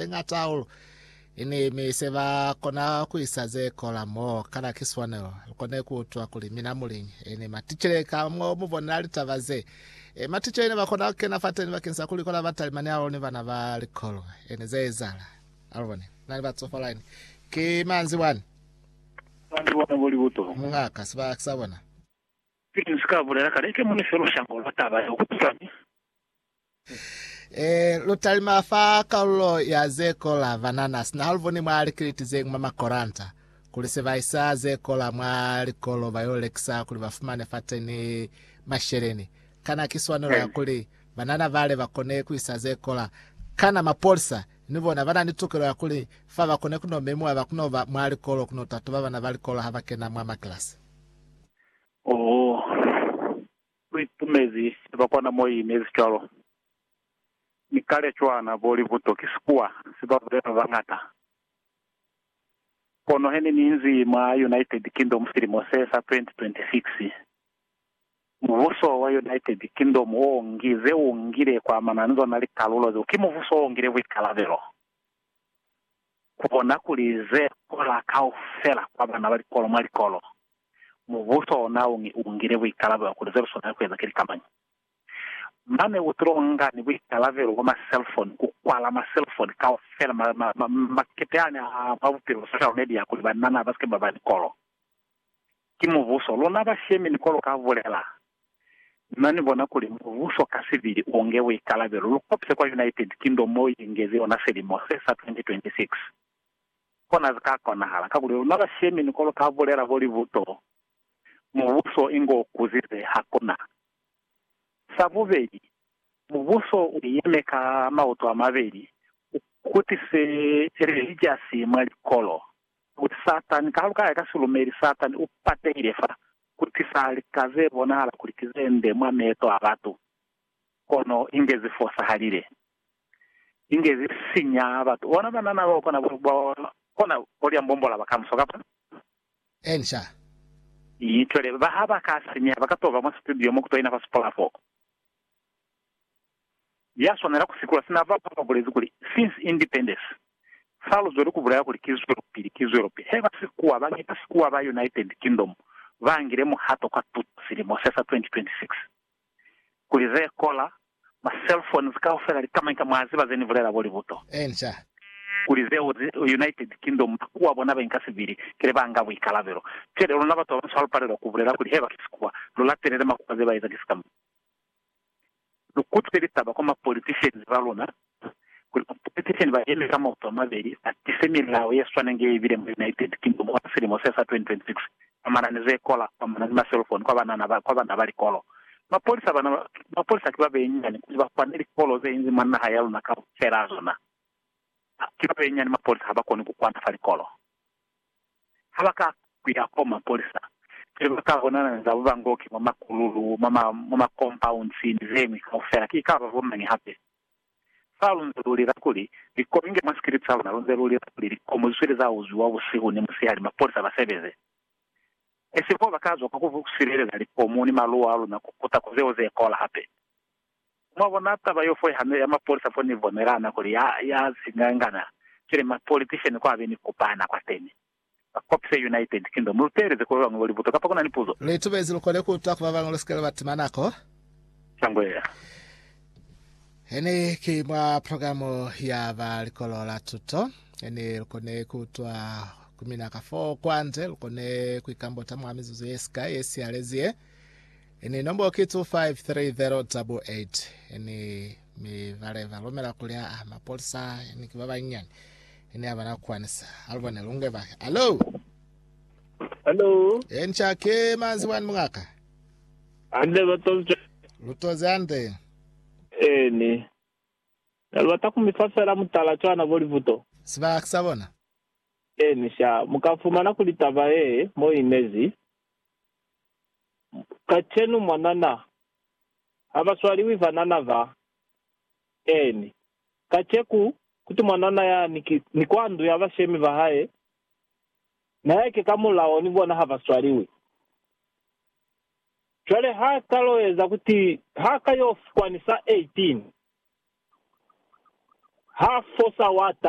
ze ñata hahulu. Ini mi se ba kona ku isa ze kola mo, kana ki swanelo lu kone ku utwa kuli mina muliñi? Ini maticele ka mo mu bonela litaba ze? E, maticele ne ba kona ku kena fateni bakeng sa ku likola batalimani hahulu ni bana ba likolo. Ini ze ezahala? A lu bone, na ni batsofala ini. Ki manzibwani. Manzibwana bo libuto. Mungaka, si ba ki sa bona. Pili ni si ka bulela kale, ke mo ni felusha ngo lwa taba yeo ku pisani. E, lu talima fa kalulo ya ze kola banana, sina ha lu boni mwa likiliti ze ñwi mwa makoranta, kuli se ba isa ze kola mwa likolo ba yo lekisa kuli ba fumane fateni masheleni. Kana ki swanelo ya kuli banana bale ba kone ku isa ze kola? Kana mapolisa ni bona ba na ni tukelo ya kuli fa ba kone ku no memiwa ba kuno ba mwa likolo kuno tatuba bana ba likolo ha ba kena mwa makilasi? Oh, Lu ipumezi ba kwana mo i inezi cwalo. Mi kale cwana bo libuto ki sikuwa se ba bulela ba bañata. Kono he ne ni inzi mwa United Kingdom silimo se sa 2026, mubuso wa United Kingdom o ngi ze u ngile ku amana ni zona likalulo zeo. Ki mubuso o ngile buikalabelo ku bona kuli ze kola kaufela kwa bana ba likolo mwa likolo Mubuso ona u ngile buikalabelo kuli zeluswanela ni kueza ki likamanyi. Mane u tilo nga ni buikalabelo bwa ma selfoni, ku kwala ma selfoni kaufela ma, ma, ma, makete ani a mwa bupilo, social media, kuli banana basike baba ni kolo. Ki mubuso. Luna bashemi ni kolo ka bulela. Na ni bona kuli mubuso ka sibili u nge buikalabelo. Lu kopise kwa United Kingdom mo i engezi ona selimo se sa 2026. Kona zika konahala, kakuli luna ba shemi ni ko lu ka bulela kuli buto mubuso inge u kuzize, hakuna. Sa bubeli, mubuso u yeme ka mauto a mabeli, u kutise relijasi mwa likolo, kakuli Satani, kaha lu ka ya ka silumeli, Satani u patehile fa ku tisa lika ze bonahala kuli ki ze nde mwa meeto a batu, kono inge zi fosahalile. inge ze sinya batu. Bona banana bao kona bo, bo kona bo lia mbombo la bakamuso, kapa. Ensha. Yi twele. Ba ha ba ka sinya, ba ka to ba mwa situdio mo ku to ina fa sipola fo. Ya swanela ku sikula sina ba, ba bulezi kuli, Since Independence, fa luzweli ku bulela kuli ki zwelopili, ki zwelopili. He ba sikuwa, ba ngi, ba sikuwa ba United Kingdom ba ngile muhato kwa tuto silimo se sa 2026. kuli ze kola, ma cell phones kaufela li kamaika mwa ziba ze ni bulela bo libuto. Enca. Kuli zeo zi United Kingdom makuwa bona ba inka sibili, kile ba nga buikalabelo. Cwele luna batu babanso ha lu palelwa ku bulela kuli heba ki sikuwa, lu latelele makuwa ze ba eza ki sikamana. Lu kutwe litaba kwa ma politicians ba luna kuli ba politician ba yeme ka maoto a mabeli ba tise milao ye swaneng ye ibile mwa United Kingdom kwa silimo se sa 2026, kwa manani ze kola, kwa manani ma cell phone, kwa banana ba, kwa bana ba likolo. Mapolisa bana, mapolisa ki ba benyinyani kuli ba kwane likolo ze inzi mwa naha ya luna kaufela zona. Ki ba benyinyani mapolisa ha ba koni ku kwana fa likolo. Ha ba ka ku ya koo mapolisa, pili ba ka bonana ni za bubangoki mwa makululu, mwa ma, mwa ma compounds ni zeñwi kaufela, ki ikaba bo mañi hape? Fa lunze lu lila kuli, Likomi nge mwa sikili sa luna, lunze lu lila kuli, Likomi lu sweli za uzwiwa busihu ni musihali, mapolisa ba sebeze. Esibo bo ba ka zwa kwa ku sileleza likomu ni maluwa a luna ku kuta ku zeo ze kola hape. Mwa bona taba yo fo hande ya mapolisa fo ni bonelana kuli ya, ya zingangana, cwale mapolitician kwa be ni kupana kwateni. ba Copse United Kingdom. Lu teeleze ku ba bañwi bo lipuzo kapa ku na ni puzo? Lu itumezi lu kone ku utwa ku ba bañwi lu si ke lwa ba tima nako. Sangwela. He ne ki mwa programu ya ba Likolo la Tuto, he ne lu kone ku utwa ku mina ka fo kwande. Lu kone ku ikambota mwa mizuzu ye sikai ye sihalezi ye. He ne nombo ki 253088. He ne mi ba leva lomela kuli aa, mapolisa he ne ki ba banyinyani. Ene ya bana kwani sa. Alubone lunge bake. Alo. Alo. E ni cha ke manzi wani mungaka. Ande ba tonze. Lutoze ande. Eni. Nalubata kumifa fela mutala cwana bo livuto. Siba kisa bona. Eni sha. Muka fumana kuli taba ye mo inezi. Kachenu mwanana. Haba swaliwi vanana ba. Eni. Kaceku kuti mwanana ya ni ki ni kwa ndu ya bashemi ba hae, na ya ki ka mulao ni bona ha ba swaliwi. Cwale ha ka lo eza kuti ha ka yo fukwa ni sa 18, ha fo sa wata.